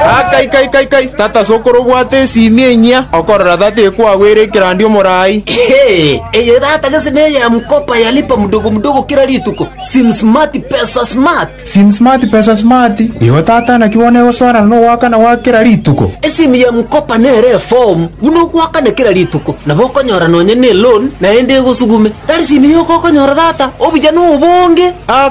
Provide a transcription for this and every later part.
Ah, kai kai kai kai tata sokoro obwate esimi enyia okorora tata ekwagwera ekerandi omorai Hey, eye data gese neye ya mkopa yalipa mdogo mdogo kila rituko sim smart pesa smart sim smart pesa smart igo tata naki bono egosoanana na ogwakana gwa kera rituko esimu ya mkopa nere form buna ogwakana kila rituko nabo okonyora nonye ne loan naende egosugume tari simu yoka okonyora data obuya nobonge Ah,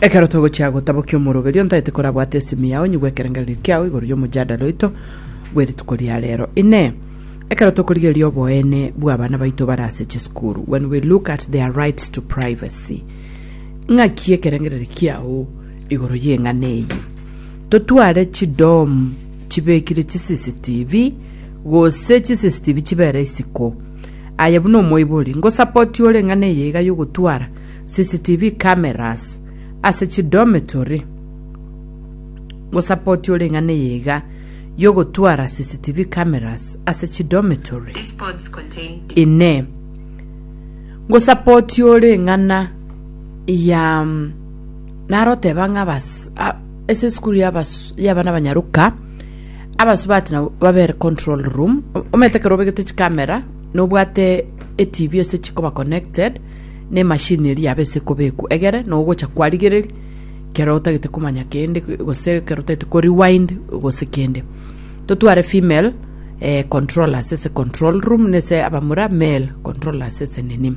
Ekero togochia gotabokia omoroberio ntaete korabwate esimi yao nyigwe ekerengererio kiao igoro y'omojadala oito bw'erituko ria rero. Inee, ekero tokorigereria oboene bw'abana baito bare ase chisukuru, when we look at their rights to privacy, ng'aki ekerengererio kiao igoro y'eng'ana eye? Totware chidom chibekire chiCCTV gose chiCCTV chibera isiko. Aye buna omoibori, ngosapoti ore ng'ana eye iga yogotwara CCTV cameras ase chidometory. Ngosapoti ore ng'ana eye iga yogotwara CCTV cameras ase chidometory. These pods contain Inee. Ngosapoti ore ng'ana ya mm, naroteba ng'a abas- a- ase esukuru y'abas- y'abana banyaroka Abasubati nabo babere control room omanyete ekero obegete chikamera nobwate etv ase chikoba connected na emachine eria yabo ase ekobekwa egere na ogocha kwarigereria ekero otagete komanya kende gose ekero otagete ko rewind gose kende totware female eh controllers ase control room na ase abamura male controllers ase nini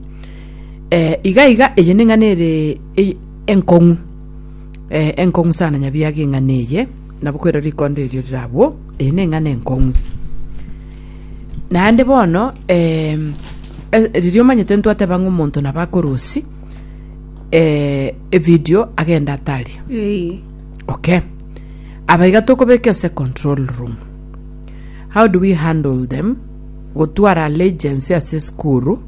eh iga iga eye neng'ana ere enkong'u eh enkong'u sana nyabiaga eng'ana eye. Nabo kwera rikonda erio rirabwo, eye neng'ana enkong'u. Naende bono em, eh, riria omanyete ntwateba ng'a omonto nabo akorusi eh, evideo agenda ataria Ee. okay abaiga tokobeka ase control room how do we handle them gotwara allegiance ase esukuru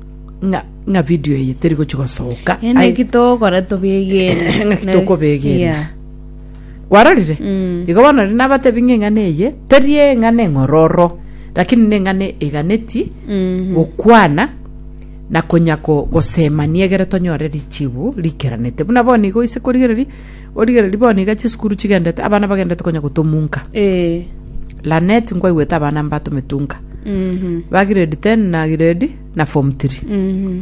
ng'a ng'a video eye teri gochi gosoka Ende Ai- ki tokora tobegere. ng'a ki tokobegera. Yeah. kwarorire Mm. igo bono riria nabatebi ng'a eng'ana eye teri eng'ana eng'ororo lakini na eng'ana eganeti Mhm. gokwana na konya ko- gosemania egere tonyore richibu rikeranete buna bono igo ase korigereria origereria bono iga chisukuru chigendete abana bagendete konya gotomunka Eh. lanet nkwaigwete abana mbatometunka Mhm. ba grade 10 na grade na form 3 Mhm.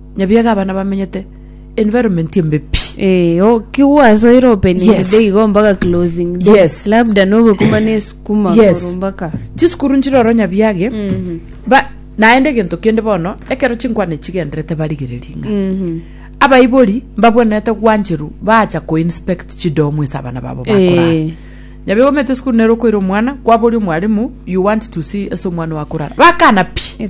Nyabiaga abana bamenyete environment embe pi. Eh, o- kigwasoire opening Yes. day igo mpaka closing day. Yes. labda nobekuma nesukuma Yes. igoro mpaka Chisukuru nchire oro Nyabiage, Mhm, ba naende egento kende bono, ekero chinkwana chigenderete barigereria ng'a. mhm. Abaibori mbabwenerete gwancheru bacha koinspect chidomu ase abana babo bakorara. Eh, Nyabiaga omete esukuru nero okoira omwana, kwaboria omwalimu, you want to see ase omwana oyo akorara. Bakana pi. eh,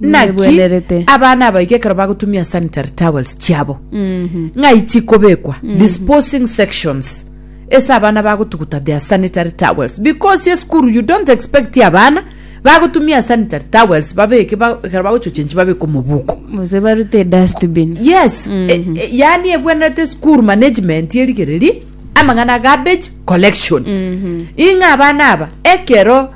Naki abana abaike ekero bagotumia sanitary towels chiabo ng'ai chikobekwa disposing sections ase abana bagotuguta their sanitary towels because esukuru you don't expect abana bagotumia sanitary towels babeke ba- ekero bagochochenchi babeke omobuko gose barute dustbin yes e- e- yaani ebwenerete school management erigereria amang'ana garbage collection ing'a abana aba ekero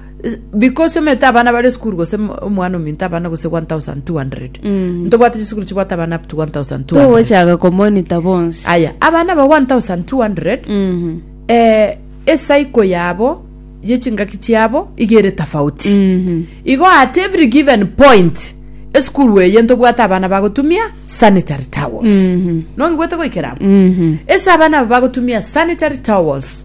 because omete abana bare esukuru gose mo- omwana ominto abana gose 1200 Mm. ntobwate chisukuru chibwate abana up to 1200 togochaga komonita bonsi aya abana ba 1200 Mhm. eh, esaiko yabo yechingaki chiabo igere tofauti Mhm. igo at every given point esukuru eye ntobwate abana bagotumia sanitary towels Mhm. nongigwete goikeramo Mhm. ese abana abo bagotumia sanitary towels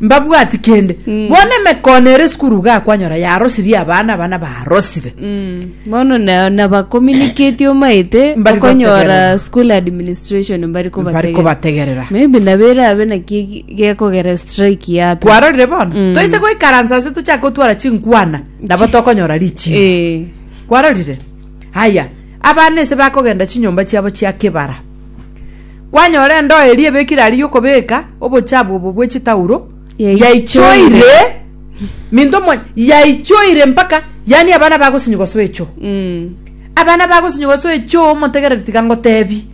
Mbabwati kende. Mm. Bono emekono ere sukuru iga akwanyora yarosirie abana abana barosire. Mm. Bono na nabakominiketie omaete Mbari okonyora gotegerera. school administration mbari Bari kobategerera. kobategerera. Maybe nabere abe naki gekogera strike yapi. Kwarorire bono? Mm. Toise goikaransa ase tochake gotwara chinkwana nabo tokonyora richiko. Eh. Kwarorire? Haya, abana ese bakogenda chinyomba chiabo chia kebara. Kwanyora endoo eria ebekire aria y'okobeka obochabu obo bwe chitauro, yaichoire minto mwa yaichoire mpaka yaani abana bagosinyiga soa echo. Mm. Abana bagosinyiga soa echo omotegereri tiga ngotebi.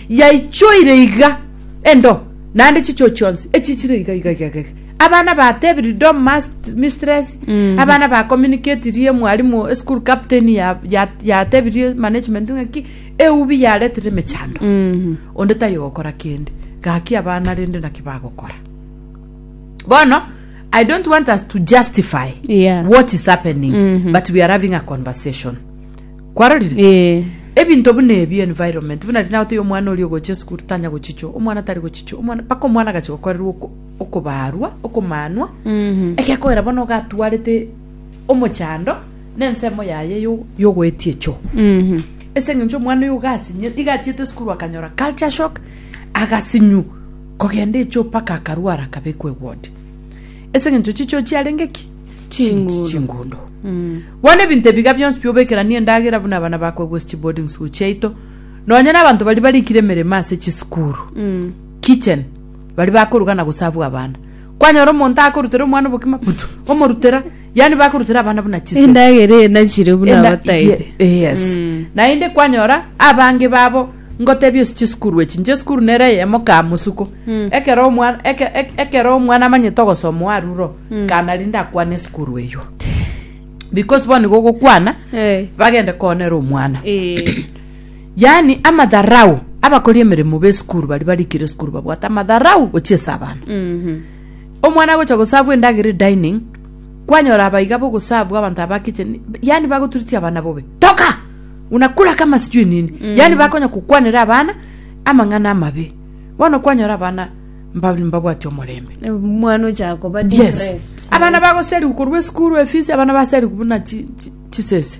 Yaichoire iga endo naende chicho chionsi echichire iga iga iga iga. Abana batebiri do must mistress. Mm. Abana ba communicate rie mwalimu school captain ya ya ya tebirie management ngaki Eubi yaretire emechando, onde taiyo gokora kende. Gaki abana rende naki bagokora? Bono, I don't want us to justify Yeah. what is happening, but we are having a conversation. Kwarorire? Eh, ebinto buna ebi environment buna rina goteya omwana oria ogocha esukuru tanya gochichwa omwana tari gochichwa omwana mpaka omwana agacha gokorerwa oko- okobaarwa okomanwa egekoera bono ogatwarete omochando nensemo yaye yogoetia echo. Ase engencho omwana oyo igasinye iga achiete esukuru akanyora culture shock agasinyu kogenda echo mpaka akarwara akabekwa eward. Ase engencho chichoo chiarenge ki? Chingundo. Chingundo. Bono ebinto ebiga bionsi pi obekeranie endagera buna abana bakwa gose chiboarding school chiaito nonya na abanto baria barikire emeremo ase chisukuru, kitchen, baria bakoruga na gosavua abana. Kwanyora omonto akorutera omwana obokima putu, omorutera, yaani bakorutera abana buna chisemi. Endagera eye nachire buna Enda- abataete. ye- yes Mm. naende kwanyora abange babo ngotebia osiche esukuru echi inche esukuru nere eyemo kaa mosuko Mm. ekero omwana eke- eke- ekero omwana amanyete ogosoma oyo aruro Mm. kana rinde akwane esukuru eywo because bono nigo ogokwana Eh. bagende koonera omwana Eh. Yaani amatharau, abakori emeremo b'esukuru baria barikire esukuru babwate amatharau gochia ase abana. Omwana agocha gosavu endagera edining, kwanyora abaiga bogosavu abanto aba kitchen, yaani bagoturitia abana bobe. Toka! Unakula kama sijui nini. Yaani bakonya kokwanera abana amang'ana amabe. Bono kwanyora abana mba- mbabwati omorembe. omwana ochaka koba Yes. depressed. Abana bagoseriwa korwa esukuru efisi, abana baseriwa buna chi- chi- chisese.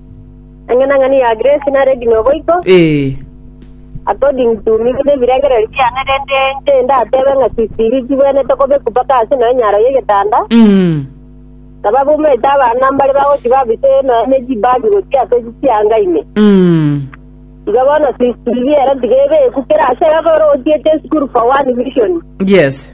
Eng'enang'eni ya Grace nare bino boigo, Ee. according to miguna ebirengererio biane rende inche ndatebe ng'a sisiri chibwenete kobekwa mpaka ase nonya enyaro y'egetanda, Mm. na babomete abana mbare bagochi babise nonya ne chibagi gochia ase chianga ime. Mm. Iga bono sisiri ere tiga ebekwa kera ase ekero otiete esukuru for one vision. Yes.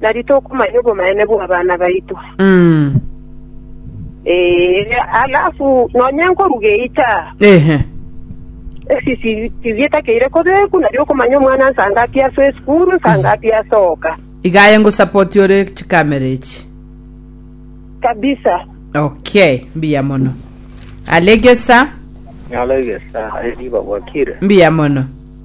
Nari tokomanya obomanene bw'abana baito. Mm. Eh, alafu nonya nkoruga eita Ehe. esi si- sibia etakeire kobeku nari okomanya omwana nsangapi asoa esukuru nsangapi asoka Iga aye ngosapoti ore chikamera echi. kabisa Okay, mbuya mono. Alegesa, Nyala egesa aye niba bwakire. mbuya mono.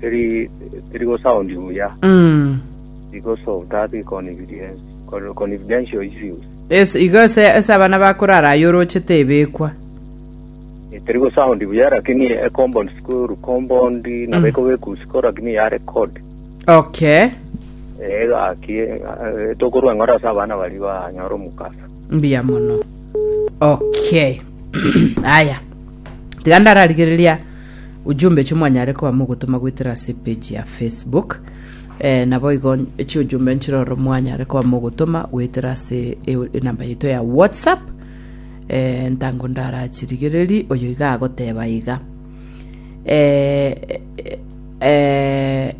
Teri, teri go sound buya. Mm. Because of that confidence, con- confidential issues. Yes, igo ase ase abana bakorara aye orochete ebekwa. Eh, Teri go sound buya lakini a compound school compound na beko bekusiko lakini ya record. Okay. Eh, gaki eh, tokorwa ngora asa abana bari ba nyoro mukasa. mbuya mono okay aya tiga ndararigereria Ujumbe echi mwanyare koba mogotoma goetera ase epeji ya Facebook. Eh, naboigo chiujumbe nchire oro mwanyare koba mogotoma goetera ase e- enamba yaito ya WhatsApp. Eh, ntango ndarachirigereri oyo iga agoteba iga. Eh, eh, eh,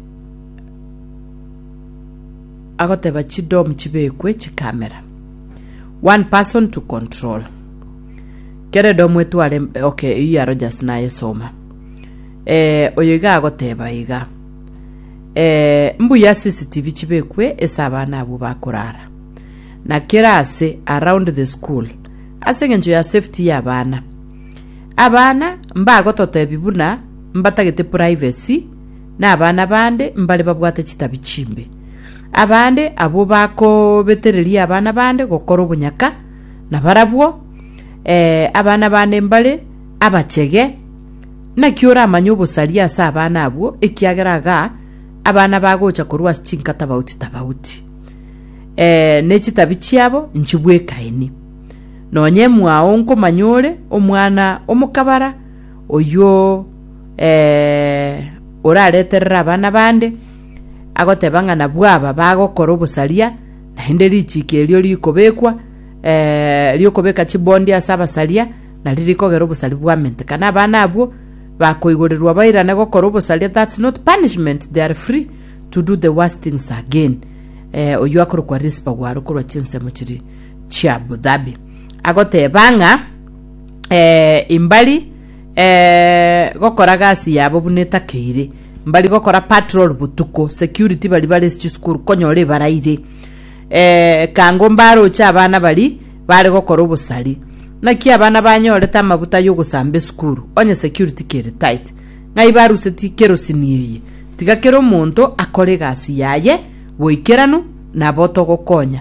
agoteba chidom chibekwe chikamera. One person to control. Keredo mwetware okay eyio ya Rogers nayesoma. Eh, oyo iga agoteba iga. Eh, mbuya CCTV chibekwe ese abana abwo bakorara. Na kera ase around the school. Ase engencho ya safety ya abana. Abana mbagototebi buna mbatagete privacy na abana bande mbare babwate chitabi chimbe. Abande abwo bakobetereria abana bande gokora obonyaka na barabwo ee, abana bane mbare abachege, naki oramanye obosaria ase abana abwo, ekiagera iga abana bagocha korwa ase chinka tabauti-tabauti, ee, ne chitabi chiabo nchibwekaini. Nonya emwao nkomanya ore omwana omokabara oyio ee, orareterere abana bande, agoteba ng'a nabwo aba bagokora obosaria, Naende richiiki erio rikobekwa ri'okobeka chibondi ase abasaria, nario rikogera obosari bw'amente. Kana abana abwo bakoigorerwa bairane gokora obosaria that's not punishment, they are free to do the worst things again. Eh, oyio akorokwa Rispa Gwaro korwa chinsemo chiri chia Abu Dhabi. Agoteba ng'a eh, imbari Eeh gokora gasi yabo buna etakeire mbari gokora patrol botuko security bari bare chisukuru konyora ebaraire eh, kango mbaroche abana bari bare gokora obosari naki abana banyorete amabuta yogosamba esukuru onye security kere tight ng'ai baruseti kerosini eye tiga kera omonto akore egasi yaye boikeranu nabo togokonya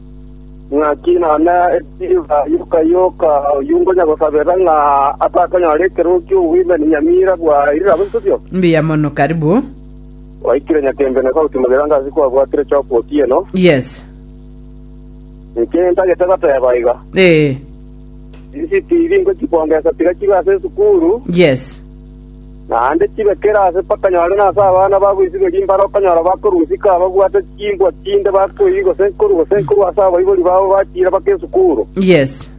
Naki none riba yoka yoka oyio ngonya gosabera ng'a atakonyora ekerogo ki'obwimeni nyamira bwa irira bosubio. Mbuya mono karibu. Waikire nyakembe na sauti mogira ngasi kwabwatire choka otieno. Yes. Niki ntagete goteba iga? Eh. Isi TV ngochibongesa tiga chibe ase esukuru. Yes. Naende chibekire ase bakanyare nase abana ba goisiberia imbare okonyora bakorua isiko ababwate chimbwa chinde bakoiri gose nkoru gose nkoru ase abaibori babo bachiire bake esukuru. Yes.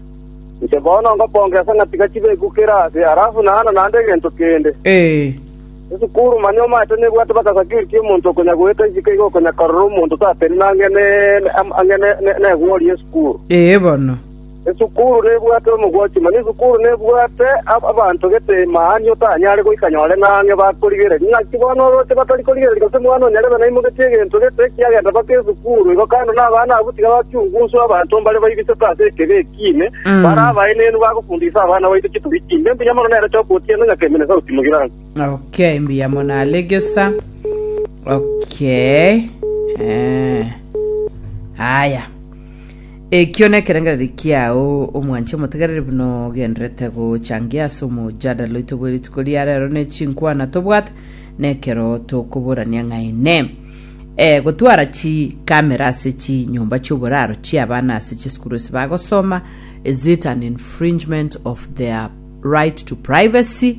Inche bono ngokonga esa ng'a tiga chibekukere ase, alafu naana naende egento kende. Ee. Esukuru mani omanyete nebwate baka security omonto okonya goeta isiko iga okonya korora omonto tatebia nang'e ne- ne- am- ang'e ne- ne- negori y'esukuru. Ee bono. Esukuru nebwate omogwachie, mani esukuru nebwate abanto gete mani otanyare goika nyore ng'ang'e bakorigereria. Naki bono oroche batari korigereria gose mwana onyarebe naimoketie egento gete ekiagera mpaka esukuru. Igo kando nabana abwo tiga bakiungu nswe abanto mbare baibisete ase ekebi ekiine, bare abaenenu bagofundisa abana baito chitori chimbe. Mbuya mono nere Choka otieno ng'a kemina esauti mogirani. Okay, mbuya mono Alegesa. Okay. Eh. Haya. Ekio nekerengererio kiao, omwanche omotegereri buna ogenderete gochangia ase omojadala oito bwe rituko ria rero ne chinkwana tobwate nekero tokoborania ng'aene. E, gotwara chi kamera ase chi nyomba chioboraro chiabana ase chisukuru ase bagosoma is it an infringement of their right to privacy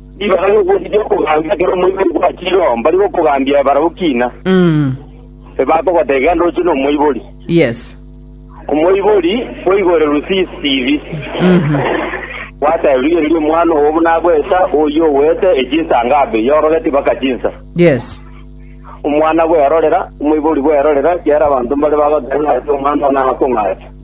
Ribaga ri'okweri ri'okogambia ekero omoibori gwachire oo mbari gokogambia barabwo kiina, Mm. ebakogoteba iga ndoche nomoibori. Yes. Omoibori bwaigoirerwe CCTV, Mhm. gwatebirwe iga riria omwana oo buna agoeta, oyio ogoete echinsa ngabe, yorogeti mpaka chinsa. Yes. Omwana bwerorera, omoibori bwerorera, kiara abanto mbare bagoteba ng'a ase omwana oo nagokong'acha.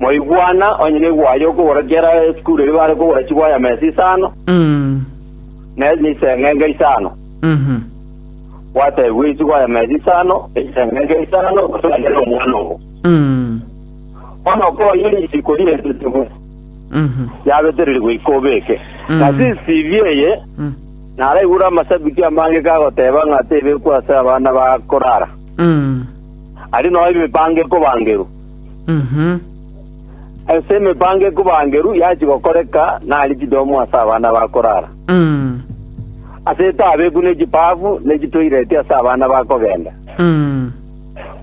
Mwaigwana onye negwa aye okogora kera esukuru eria bare kogora chigwaya mesa isano, Mm. ne niseng'enge isano. Mhm. Gwatebigwe ichigwaya mesa isano, eseng'enge isano, gose wanyare omwana obo. Mm. Bono okoye risiko rirentetigwe, Mhm. yabetererigwe iko obeke. Mm. Na CCTV eye, Mm. naraigure amasabiti amange kagoteba ng'a tebekwa ase abana bakorara. Mm. Aria nao emipango ekobangerwa. Ase emepango ekobangeru yachia gokoreka nari chidomo ase abana ba korara, ase etabeku ne chibaafu ne chitoireti ase abana ba kogenda.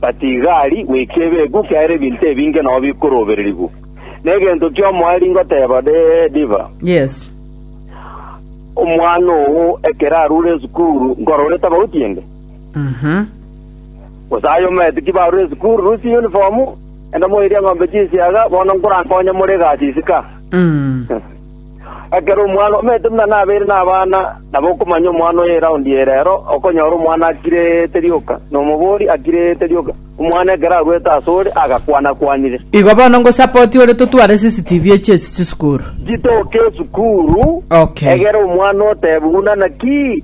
But igari goika ebeku kiaera ebinto ebinge nao bikorobererigwa. Na egento ki'omoerio ngoteba dee Diva, Yes. omwana oo ekero arure esukuru nkorora etabagotiende. Gose aye omaeti ki barure esukuru, rusia eyunifomu, genda moerie eng'ombe chinsiaga, bono nkorankonye more egasi isika. Ekero omwana omaete buna nabeire nabana, nabo okomanya omwana oye eraundi eye rero, okonyora omwana akirete rioka, na omobori akirete rioka. Omwana ekero aruete asore, agakwana-kwanire. Igo bono ngosape otiore totware CCTV echi ase chisukuru. Chitoke esukuru, Okay. egera omwana otebe, buna naki?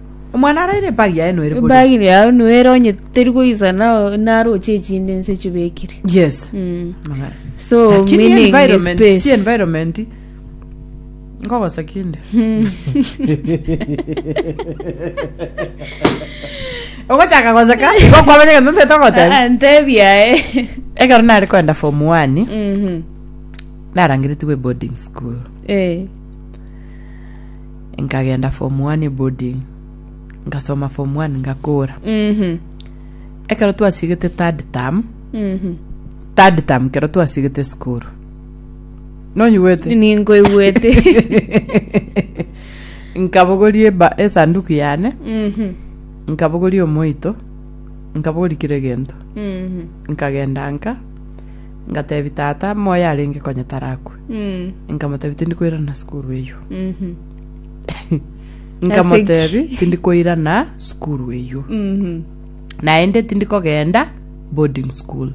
Omwana araire ebagi yaye noere boria. ebagi yaye noere onye teri goisana o- naroche echinde nse chibekire Yes. Mm. Magara. so Lakini meaning ni environment, space. si environment. Ngogosa kinde. Ogochaka goseka, igokwamenya gento ntete ogoteba. Ah, ah, ntebi yaye Ekero nare kwenda form one, Mhm. narangeretigwe boarding school. Eh. Nkagenda form one boarding, nkasoma form one ngakora. Mhm. Ekero twasiegete third term, Mhm. third term kero twasiegete skuru. Nonyigwete? Ninkoigwete. Nkabogoria eba- esanduku yane, Mhm. nkabogoria omoito, nkabogoria kira egento. Mhm. Nkagenda nka Ngateebia tata, moyo arenge konya tarakwe. Nkamotebia, tindi koirana sukuru eyio. Nkamotebia, tindi koirana sukuru eyio. Naende tindi kogenda boarding school.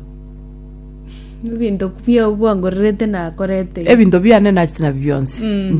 Ebinto bia- bwangorerete nakorete. Ebinto biane nachete nabio bionsi.